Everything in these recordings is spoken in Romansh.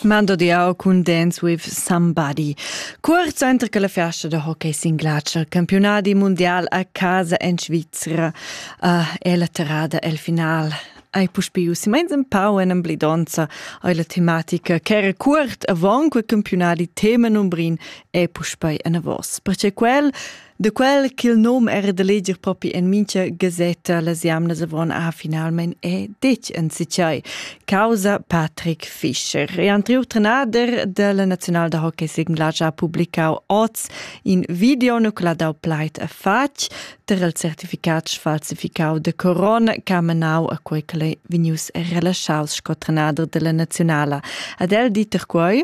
Mando di au cun Dance with Somebody. Cuort center che la festa da hockey singlacer campionadi mundial a casa en Svizra uh, è la terrada el final ai puspiu si meins en pau en emblidonza ai la tematica ch'era cuort avant quei campionadi tema numbrin e puspei en avos. Perche quel De quel ch'il nom era da leger propi en mincha gazetta, las jamnas avon ha finalmein è detg en sicai, causa Patrick Fischer. E Andriu Trenader della National da Hockey Sigla ha publicau oz in video no quella dau pleit a fatg ter il certificat falsificau de corona ca menau a quei che vegnius relaschaus sco Trenader della Nazionala. Ad el diter quei?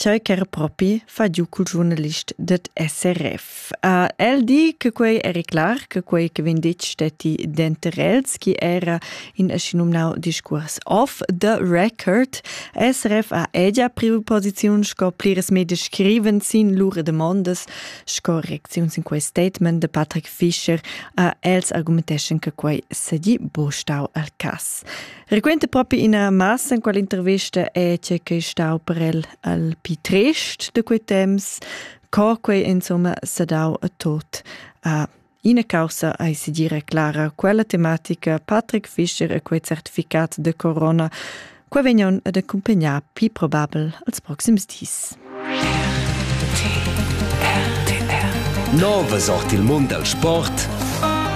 tgei ch'era propi fa giu cul giurnalist dad SRF. el di che quei eri clar che quei che vegn detg stetti denter els, chi era in aschinumnau discuors off the record. SRF ha edia priu posiziun sco pliras media scriven sin lur demondas sco reacziun sin quei statement de Patrick Fischer. els argumenteschan che quei sedi buca stau al cass. Requenta propi ina massa en quella intervista è che che stau per el al pi trist de quei temps, co quei insomma se dau a tot. A ina causa ai si dire clara, quella tematica Patrick Fischer e quei certificat de corona, quei vegnan ad accompagnar più probabel als proxims dis. Nove sort il mund al sport